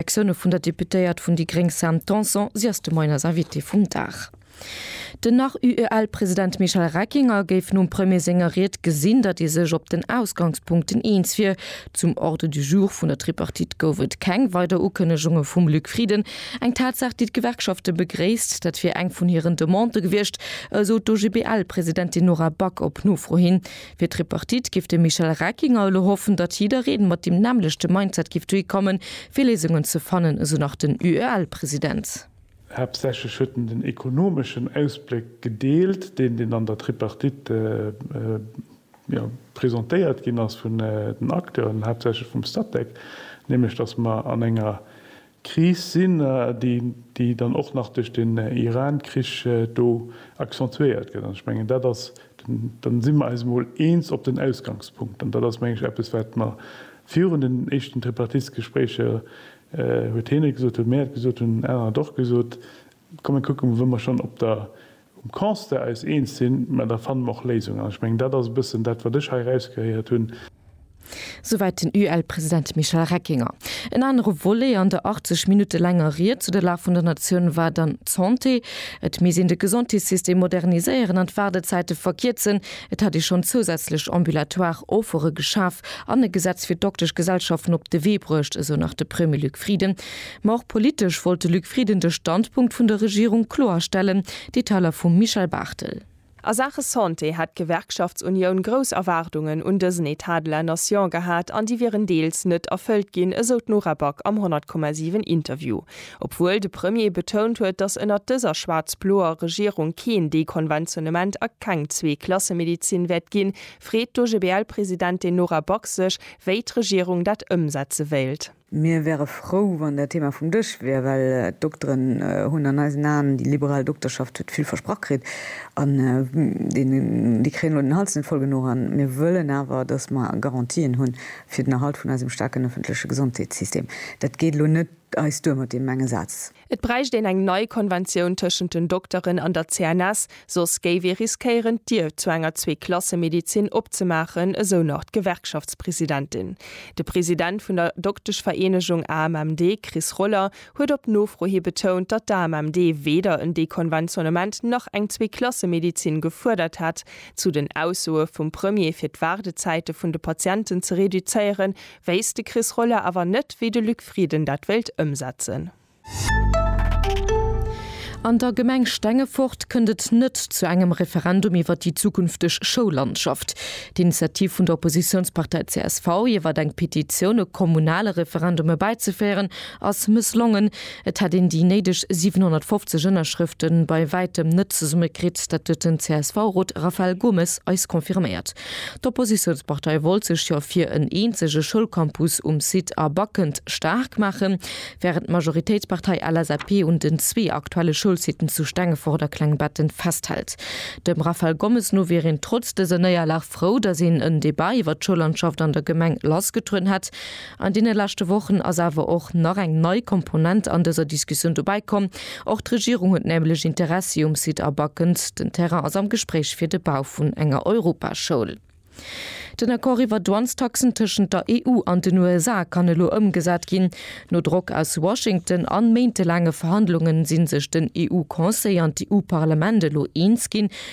Reaktioune vun der Deputéiert vun déi gréng Sam Tanson. Si ass de Moien eis Invitée vum Dag. Den nach UEL-President Michel Reckinger géif nom Premier senger Ried gesinn, datt ee sech op den Ausgangspunkten eens wier. Zum Ordre du jour vun der Tripartite gouf et keng weider Ukënnegunge vum Luc Frieden. Eng Tatsaach, déi d'Gewerkschafte begréisst. Dat wier eng vun hiren Demandë gewiescht, esou d'OGBL-Presidentin Nora Back op Nofro hin. Fir d'Tripartite giff de Michel Reckinger elo hoffen, datt jiddereen mat deem nämmlechte Mindset giff dohi kommen, fir Léisungen ze fannen, esou nach den UEL-President. Haaptsächlech huet en den ekonomeschen Ausbléck gedeelt, deen deen an der Tripartite presentéiert ginn ass vun den Acteuren, haaptsächlech vum Statec, nämlech datt mer an enger Kris sinn, déi dann och nach duerch den Iran-Krich do accentuéiert gëtt. An ech mengen, dat ass, dann si mer eis emol eens op den Ausgangspunkt. An dat ass, meng ech, eppes, wat mer virun den éischten Tripartite-Gespréicher, huet hien et gesot, huet mir et gesot, hunn anerer et och gesot, kommen kucke wou mer schonn op der Um Constat eis eens sinn, mä da fanne mer och Léisungen. An ech mengen, dat ass e bëssen dat, wat ech hei erausgehéiert hunn. Souwäit den UEL-President Michel Reckinger. En anere Volet an der 80 Minutte laanger Ried zu der Lag vun der Natioun war dann d'Santé. Et misst een de Gesondheetssystem moderniséieren an d'Waardezäite verkierzen. Et hätt ee schonn zousätzlech ambulatoire Offere geschaf an e Gesetz fir d'Dokteschgesellschaften op de Wee bruecht, esou nach de Premier Luc Frieden. Ma och politesch wollt de Luc Frieden de Standpunkt vun der Regierung kloerstellen, Detailer vum Michel Barthel. A Saache Santé hätt d'Gewerkschaftsunioun grouss Erwaardungen un dësen Etat de la Nation gehat an déi wieren deels net erfëllt ginn, esou d'Nora Back am 100,7 Interview. Obwuel de Premier betount huet, datt ënnert dëser schwaarz-bloer Regierung keen Dekonventionnement a keng Zwee-Klasse-Medezin wäert ginn, freet d'OGBL-Presidentin Nora Back sech, wéi d'Regierung dat ëmsetze wéilt. Mir wäre frou, wann dat Thema vum Dësch wier, well d'Dokteren hunn an eisen Aen, déi liberal Dokterschaft huet vill versprach kritt an déi kréien elo den Hals net voll genuch. An mir wëllen awer, datt mer Garantien hunn fir den Erhalt vun eisem staarken ëffentleche Gesondheetssystem. Dat geet elo net eis duer mat deem enge Saz. Et bräicht een eng nei Konventioun tëschent den Dokteren an der CNS, soss géif ee riskéieren, d'Dier zu enger Zweeklassemedizin opzemaachen, esou nach d'Gewerkschaftspresidentin. De President vun der Dokteschvereenegung AMMD, Chris Roller, huet op Nofro hi betount, datt d'AMMD weder en Dekonventionnement nach eng Zweeklassemedizin gefuerdert hätt. Zu den Aussoe vum Premier, fir d'Waardezäite vun de Patienten ze reduzéieren, Wéisst de Chris Roller awer net, wéi de Luc Frieden dat wéilt ëmsetzen. An der Gemeng Stengefort kënnt et net zu engem Referendum iwwer déi zukünfteg Schoullandschaft. D'Initiativ vun der Oppositiounspartei csv, iwwer eng Petitioun e kommunale Referendum erbäizeféieren, ass mësslongen. Et hätt een déi néideg 750 Ënnerschrëfte bei wäitem net zesummekritt. Dat huet den CSV-Rot Raphael Gomes eis confirméiert. D'Oppositiounspartei wollt sech jo fir en eenzege Schoulcampus um Site A Backend staark maachen, wärend d'Majoritéitspartei LSAP un den zwee aktuelle Schoulsiten zu Stengefort a Klengbetten festhält. Dem Raphael Gommes no wier een trotz dëser Néierlag frou, datt een en Debat iwwer d'Schoullandschaft an der Gemeng lassgetrueden hätt. An deene leschte Wochen ass awer och nach eng nei Komponent an dëser Diskussioun dobäi komm. Och d'Regierung huet nämlech Interessi um Site A Backens. Den Terrain ass am Gespréich fir de Bau vun enger Europaschoul. Den Accord iwwer Douanestaxen tëschent der EU an den USA kann elo ëmgesat ginn. No Drock aus Washington an méintelaange Verhandlungen, si sech den EU-Conseil an d'EU-Parlament elo eens ginn,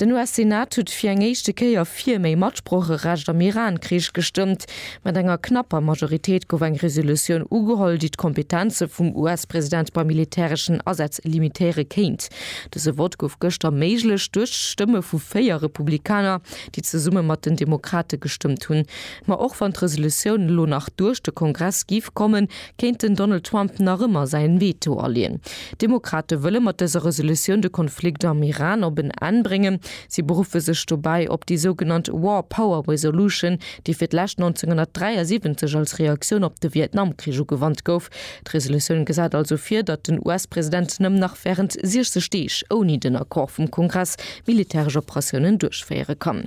Den US-Senat huet fir eng éischte Kéier fir méi Matsprocherecht am Iran-Krich gestëmmt. Mat enger knapper Majoritéit gouf eng Resolutioun ugeholl, déi d'Kompetenze vum US-President bei militäreschen Asätz limitéiere kéint. Dëse Vott gouf gëschter méiglech duerch d'Stëmme vu véier Republikaner, déi zesumme mat den Demokrate gestëmmt hunn. Ma och wann d'Resolutioun elo nach duerch de Kongress géif kommen, kéint den Donald Trump nach ëmmer säin Veto aleeën. D'Demokrate wëlle mat dëser Resolutioun de Konflikt am Iran op en Enn bréngen. Si beruffe sech dobäi op déi sougenannt War Power Resolution, déi fir d'lescht 1973 als Reaktioun op de Vietnamkrich ugewannt gouf. D'Resolutioun gesäit also vir, datt den US-President nëmmen nach wärend 60 Deeg, ouni den Accord vum Kongress, militäresch Operatiounen duerchféiere kann.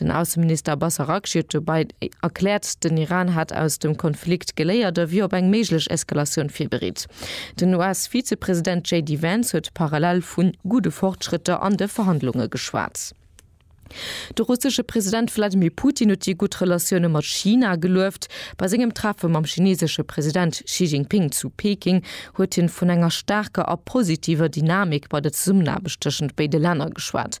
Den Ausseminister Abbas Araghchi huet dobäi erkläert, den Iran hätt aus dem Konflikt geléiert a wier op eng méiglech Eskalatioun virbereet. Den US-Vizepresident JD Vance huet parallel vu gudde Fortschrëtter an de Verhandlunge geschwat. De russesche President Wladimir Putin huet déi gutt Relatioune mat China gelueft. Bei sengem Treffe mam chineesesche President Xi Jinping zu Peking huet hien vun enger staarker a positiver Dynamik bei der Zesummenaarbecht tëschent béide Länner geschwat.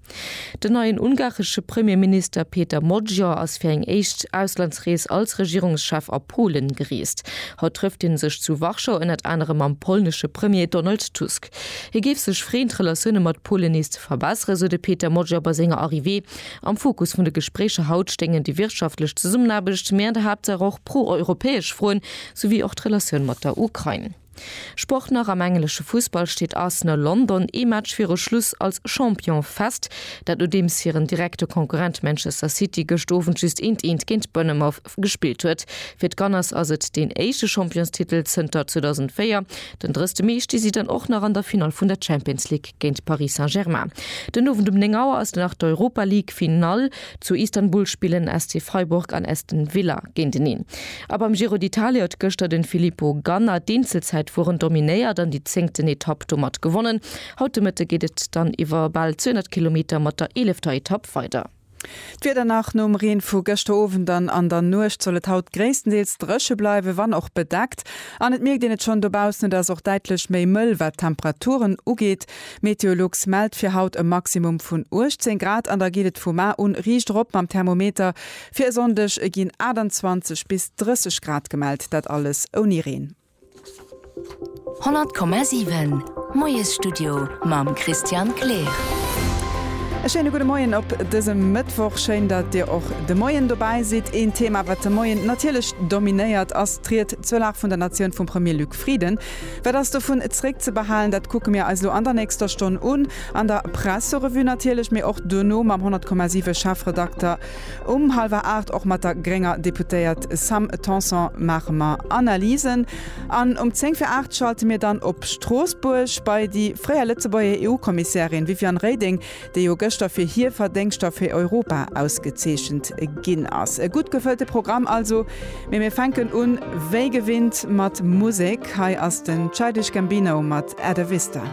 Den neien ungaresche Premierminister Péter Magyar ass fir eng éischt Auslandsrees als Regierungschef a Polen gereest. Haut trëfft hie sech zu Warschau ënnert anerem mam polnesche Premier Donald Tusk. Hie géif sech freeën, d'Relatioune mat Polen nees ze verbesseren, sou de Péter Magyar bei senger Arrivée. Am Fokus vun de Gespréicher haut stéingen déi wirtschaftlech Zesummenaarbecht, mee an der Haaptsaach och pro-europäesch Froen, souwéi och d'Relatioun mat der Ukrain. Sport nach, Am englesche Fussball steet Arsenal London ee Match viru Schluss als Champion fest. Dat nodeems hiren direkte Konkurrent Manchester City gëscht Owend just eent eent géint Bournemouth gespillt huet. Fir d'Gunners ass et deen éischte Championstitel zënter 2004. Den 30 Mee sti si dann och nach an der Finall vun der Champions League géint Paris Saint-Germain. Den Owend um 9 Auer ass dann nach d'Europa League Finall. Zu Istanbul spillen SC Freiburg an Aston Villa géinteneen. A beim Giro d'Italia huet gëschter de Filippo Ganna d'Eenzelzäitfueren dominéiert an déi zéngten Etapp domat gewonnen. Haut de Mëtte geet et dann iwwer bal 200 Kilometer mat der eelefter Etapp weider. D'Wieder nach, Nom Reen vu gëschter Owend an an der Nuecht soll et haut gréisstendeels dréche bleiwen, wann och bedeckt. An et mierkt een et schonn dobaussen, et ass och däitlech méi mëll, wat d'Temperaturen ugeet. Meteolux mellt fir haut e Maximum vun 18 Grad an da geet et vu mar un riicht erop mam Thermometer. Fir e Sonndeg ginn 28 bis 30 Grad gemellt, dat alles ouni Reen. 100,7 Moiesstudio mam Christian Kleer. E schéine gudde Moien op dësem Mëttwoch. Schéin, datt Dir och de Moien dobäi sidd. Een Thema, wat de Moien natierlech dominéiert, ass d'Ried zur Lag vun der Natioun vum Premier Luc Frieden. Wat ass dovun zréckzebehalen? Dat kucke mir eis elo an der nächster Stonn un, an der Presserevue natierlech, mee och duerno mam 100,7 Chefredakter um hallwer aacht. Och mat der grénger Deputéiert Sam Tanson maache mer Analysen. An um zéng fir aacht schalte mir dann op Stroossbuerg bei déi fréier Lëtzebuerger EU-Kommissärin Viviane Reding, déi jo gëschter fir hir Verdéngschter fir Europa ausgezeechent ginn ass. E gutt gefëllte Programm also, mee mir fänken un wéi gewinnt mat Musek. Hei ass den Childish Gambino mat At A Vista.